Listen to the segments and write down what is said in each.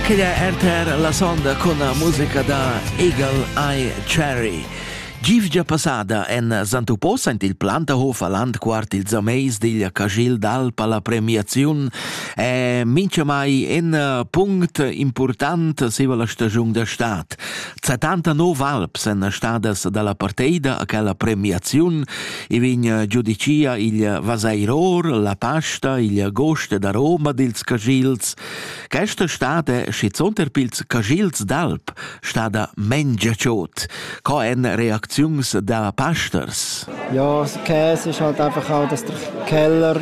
Quella è RTR la sonda con la musica da Eagle Eye Cherry. Givgia passada en Santupò saint il Plantahof a landquart ils ameis digl Cagil d'Alp alla premiaziun è mincha mai in punct important siva la stagiun da stad. 70 nov alps èn stadas dalla parteida a quella premiaziun e vegn giudicia il Vaseiror, la Pasta, il Goste da Roma dils Cagils. Questa stada schizunt er pils Cagils d'Alp stada mengiaciot. Co en reacziuns da Pasters? Ja, das Käse ist halt einfach auch, dass der Keller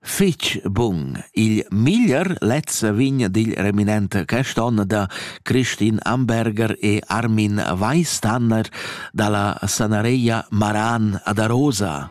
Fich bun. Il miglier lezza vin digl reminent quest'on da Christin Amberger e Armin Weistander dalla sanareia Maran ad Arosa.